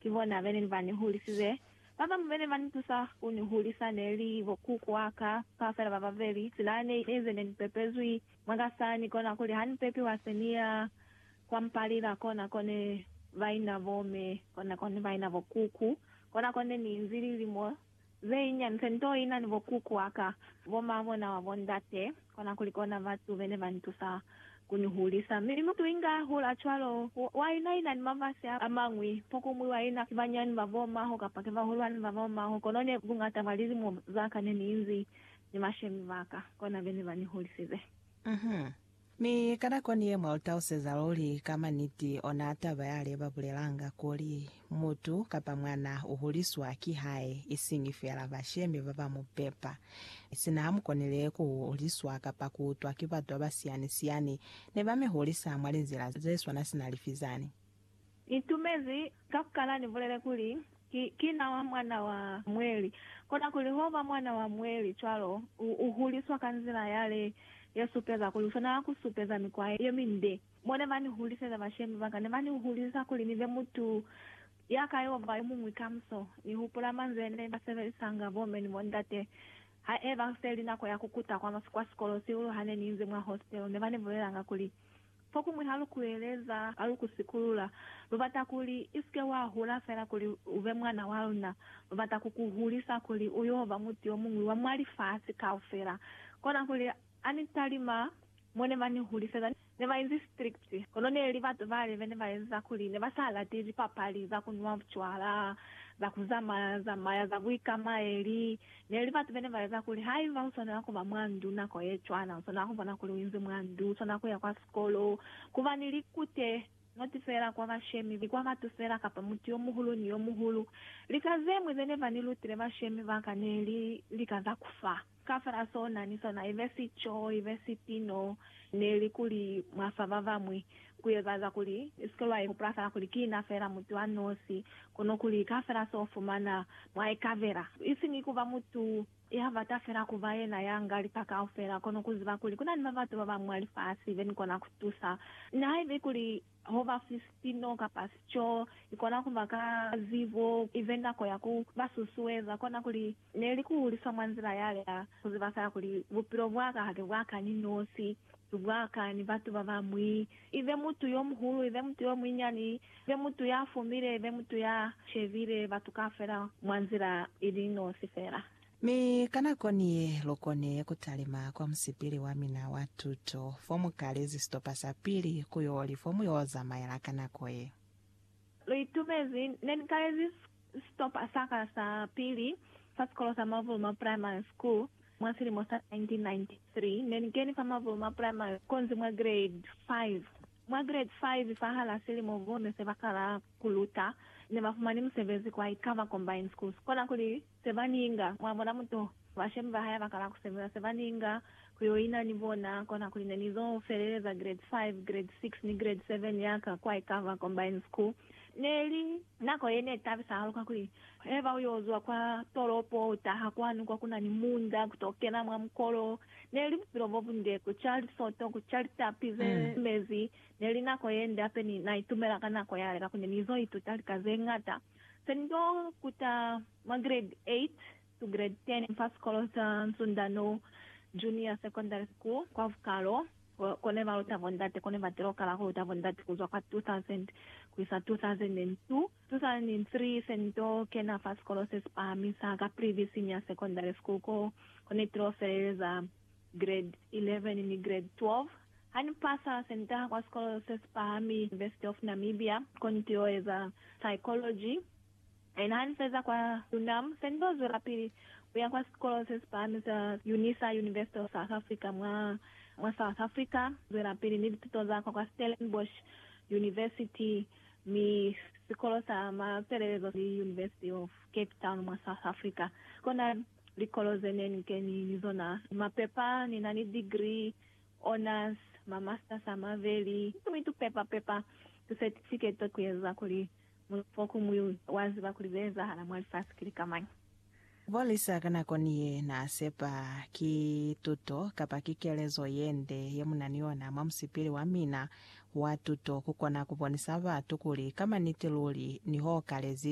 Ki bona bene ni ba ni hulisize. Ba bañwi bene ba ni tusa ku ni hulisa ne li bo kuku wa ka, ka fela ba babeli. Sila ne i eze ne ni pepezwi mwa ka sa ni kona kuli ha ni pepiwa se ni ya kwa mpalila kona ko ne ba ina bo me, kona ko ne ba ina bo kuku, kona ko ne ni inzi lilimo. Ze inyani fe nto ina ni bo kuku waka, bo ma bona wa bo ndate, kona kuli kona batu bene ba ntusa ku ni hulisa. Mi mutu inga hula cwalo, wa ina ina ni mafasi a mañwi, pokumwi wa ina ki banyani ba bo maho kapa ki bahulwani ba bo maho, kono ne buñata bwa lilimo zaka ne ni inzi ni mashemi baka, kona bene ba ni hulisize. Mi ka nako ni ye mwa lu tauseza luli ka ma niti, ona taba ya le ba bulelanga kuli, Mutu, kapa mwana, u huliswa ki hae, isiñi fela bashemi ba ba mu pepa. Sina ha mu konile ku huliswa kapa ku utwa ki batu ba ba siyani-siyani, ne ba mi hulisa mwa linzila ze swana sina lifi zani. Itumezi ka ku kala ni bulele kuli, Ki, ki na wa mwana wa mweli. Kona kuli ho ba mwana wa mweli cwalo, u, u huliswa ka nzila yale ye supeza kuli u swanela ku supeza mikwa ye minde. Mo ne ba ni huliseza, bashemi ba ka ne ba ni hulisa kuli ni be mutu ya ka yoba yo muñwi kamuso. Ni hupula manzwi ne ba sebelisanga bomme ni bondate ha e ba se li nako ya ku kuta kwa, kwa sikolo sihulu ha ne ni inzi mwa hositelo. Ne ba ni bulelanga kuli, Fokuñwi ha lu kueleza, ha lu ku sikulula. Lu bata kuli i si ke wa hula fela kuli u be mwana wa luna. Lu bata ku ku hulisa kuli u y'o ba mutu yo muñwi wa mwa lifasi kaufela. Kona kuli, ha ni talima, mo ne ba ni huliseza ne ba inzi strict. Kono ne li batu bale be ne ba eza kuli ne ba sa lati lipapali za ku nwa bucwala, za ku zamaya zamaya, za buikamaeli, Ne li batu bene ba eza kuli haiba u swanela kuba mwa ndu nako ye cwana, u swanela kubona kuli u inzi mwa ndu, u swanela kuya kwa sikolo, kuba ni likute, noti fela kwa bashemi, ni kwa batu fela, kapa mutu yo muhulu ni yo muhulu. Lika zemwi zene ba ni lutile bashemi ba ka ne li lika za ku fa. Kaufela so na ni sona, ibe sico, ibe sipino, ne li kuli mwa fa ba bamwi. ku ezaeza kuli i si ke lwa ihupula fela kuli ki na fela mutu a nosi, kono kuli ka fela se u fumana mwa ikabela. Isiñi ku ba mutu ya bata fela ku ba yena ya nga lika kaufela, kono ku ziba kuli ku na ni babatu ba bañwi mwa lifasi be ni kona ku tusa. Nihaiba kuli ho ba fi sipino kapa sico, i kona ku ba ka zibo i be nako ya ku ba susueza. Kona kuli ne li ku hulisa mwa nzila yale ya ku ziba fela kuli, Bupilo bwa ka ha ki bwa ka ni nosi. Lubwaka ni batu babañwi, ibe mutu yomuhulu, ibe mutu yomunyinyani, ibe mutu yafumile, ibe mutu ya shebile batu kaufela mwa nzila ili nosi feela. Mi ka nako ni ye, lukoni kutalima kwa musipili wamina wa tuto fomukalezi sitopa sapili ku yoli fomuyo zamaela ka nako ye. Lu itumezi. Ne ni kalezi sitopa sa ka sa pili fa sikolo sa Mavuluma Primary School mwa silimo sa 1993. Ne ni keni fa Mavuluma Primary konzi mwa grade 5. Mwa grade 5, fahal'a silimo bo ne se ba kala ku luta, ne ba fumani musebezi kwa Ikava Combined Schools, kona kuli se ba ninga, mwa bona mutu, bashemi ba hae bakala ku sebeza se ba ninga ku yo ina ni bona, kona kuli ne ni zo feleleza grade 5, grade 6 ni grade 7 ya ka kwa Ikava Combined School. Ne li nako ye ne tabisa hahulu kakuli heba u yo zwa kwa tolopo u taha kwanu kwa ku na ni munda ku to kena mwa mukolo. Ne li bupilo bo bunde, ku ca lisoto, ku ca litapi ze mezi. Ne li nako ye nde hape ni na itumela ka nako yale kakuli ne ni zo ituta lika ze ñata. Pendo kuta mwa grade 8 to grade 10 fa sikolo sa Nsundano Junior Secondary School kwa Vukalo, ko ne ba luta bondate. Ko ne ba tilo kala ku luta bondate ku zwa kwa 2000 ku isa 2002. 2003, se ni to kena fa sikolo se si pahamisa, Caprivi Senior Secondary School, ko ne tilo feleleza. Grade 11 ni Grade 12. Ha ni pasa, se ni taha kwa sikolo se si pahami, University of Namibia, ko ni t'o eza Psychology. Ena ha ni feza kwa UNAM, se ni t'o zwelapili ku ya kwa sikolo se si pahami sa Unisa, University of South Africa, mwa mwa South Africa, zwelapili ni lituto za ka kwa Stellenbosch University, mi sikolo sa mafelelezo ki University of Cape Town, mwa South Africa. Kona. Likolo ze ne ni keni ni zona, mapepa, ni na ni degree, honours, ma masters a maveli, mi tu pepa pepa tu certificate ku eza kuli mutu fokuñwi wa ziba kuli ze ezahala mwa lifasi ki lika mañi. Bo Lisa ka nako ni ye na sepa ki tuto kapa ki kelezo ye nde ye mu na ni yona mwa musipili wa mina wa tuto ku kona ku bonisa batu kuli ka maniti luli ni ho kalezi